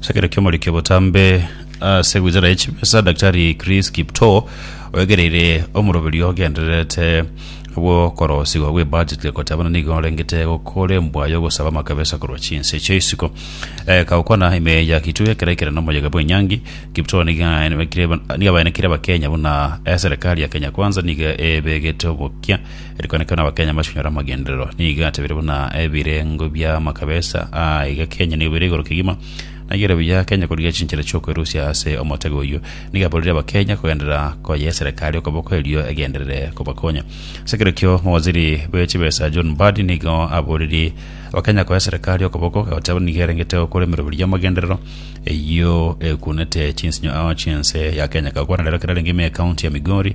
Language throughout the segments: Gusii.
Sekero kiomorikio botambe ase gwizara y'echimesa Daktari Chris Kiptoo oegereire omoroberi ogendererete bw'okorosigwa gw'ebudget goteebana nigo orengete gokorembwa y'ogosaba amakabesa korwa chinse chia isiko Eh, kagokwana ime ya Kitui ekero aikire n'omoyega bw'enyangi Kiptoo nigo aenekire- nigo abaenekire abakenya buna eh, serikali ya Kenya Kwanza nigo ebegete obokia Erikonekerwa n'Abakenya mbaswenyore amagenderero nigo atebire buna ebirengo bia makabesa aa iga Kenya nigo bire igoro kegima naiyo ere buya Kenya korigia chinchera chi'okwerusia ase omotego oyio. Nigo aborire Abakenya kogenderera koyia eserekari okoboko erio egenderere kobakonya. Ase ekero ekio mowaziri bwe chibesa John Mbadi nigo aboririe Abakenya koyia eserekari okoboko agoteba nigo erengete gokora emeroberi y'amagenderero eyio ekunete chinsinyo ao chinse ya Kenya. Gakwana rero ekero arenge ime ecounty ya Migori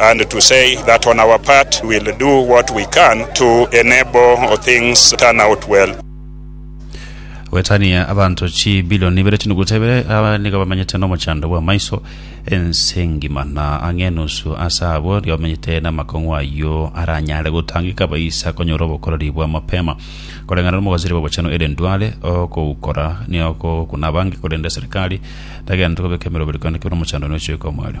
and to say that on our part we will do what we can to enable things turn out well. Goetania abanto chibilioni ibere chinuguta ibere aba nigo bamenyete nomochando bw'amaiso ense engima, na ang'e enusu ase abwo nigo bamenyete namakong'u ayio aranyare gotangeka baisa konyora obokoreri bwa mapema koreng'ana nomogosiri bw'obochenu ere ndware okoukora niokokuna abange korende eserikari tagenta kobeka emeroberi korende kebe nomochando noechoika omware.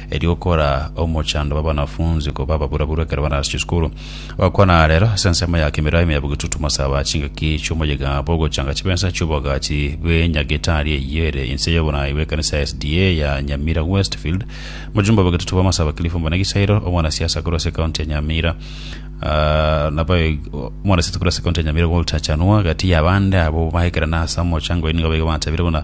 erio okora omochando bw'abanafunsi koba ababuraburu ekero barase chisukuru. Ogokwana rero ase ensemo ya kemirao ime ya bogetutumo saba chingaki chi'omoyegabo ogochanga chibesa chi'obogachi bw'enyagitari eyio ere inse y'oborai bw'ekanisa ya SDA ya Nyamira Westfield. Mojumbe obogetutumo Masaba Cliff Omonagisairo, omwanasiasa akorwa ase ekaunti ya Nyamira ah, nabo omwanasiasa akorwa ase ekaunti ya Nyamira Walter Chanua gati y'abande abo baekerana ase omochango oyo nigo baigo batabire buna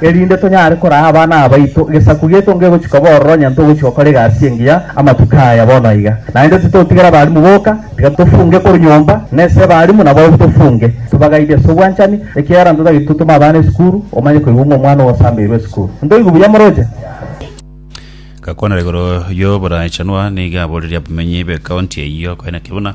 erinde tonyare koraa abana abaito egesaku giaito ngegochia koba ororo onye ntogochia gokora egasi engiya amatuko aya bono iga. Naende titotigera abalimu boka, tiga tofunge korwa nyomba, na ase abalimu nabo tofunge, tobagaidie ase obwanchani, ekiagera ntotageti totome abana esukuru, omanye koigwa ng'a omwana ogosambeirwe esukuru. Ntoigwe buya moroche? Gakwana igoro y'oborachanwa nigo aboreria abamenyi b'ekaunti eyio koenekio buna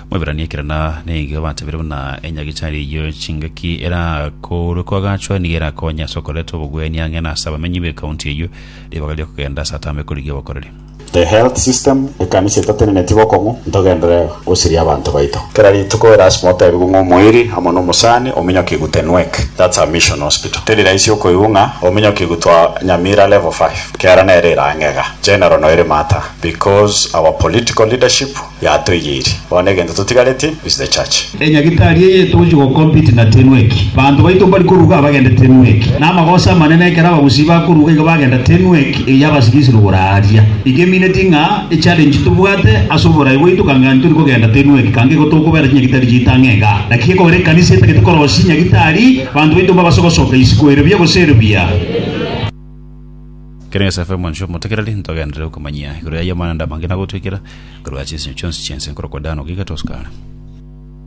Mweberania ekerana nigo ebatebire buna enyagichari eyio chingaki erakoorwe koagachwa nigo erakonye ase okoreta obogwenia ang'e na ase abamenyi b'ecounty eyio ribaga ri'okogenda ase atama ekorigia obokoreri. The health system, ekanisa etatenenetie bokong'u, ntogendere gosiria abanto baito. Kera rituko erasima otebigwe ng'a omoiri amo nomosani ominyokigwe Tenwek, that's a mission hospital. Teri raisi okoigwa ng'a ominyokigwe twa Nyamira level five, kiara nere ere ang'e iga. General noiri matter because our political leadership Yatoigeiri. Bono egento totigareti is the church. Enyagitari eye etogochia go compete na tenu eki. Banto baito mbari koruga abagende tenu eki. Namagoso amanene ekero abagusii bakoruga iga bagenda tenu eki eye abasibie ase rogoro aaria. Iga emineti ng'a e challenge tobwate ase oborai bwaito kang'ani tori kogenda tenu eki kanga igo tokobera chinyagitari chiaito ang'e iga. Naki gekogera ekanisa etagete korosia nyagitari, banto baito mbabase gosoka isiko ere buya gose ere buya. Ekero Yosefu omonchwa omotegereri, ntogenderere okomanyia igoro y'ayio amang'ana amange na gotwekera korwa chinsemo chionsi chi'ense nkorokwa Dani goika Toscana.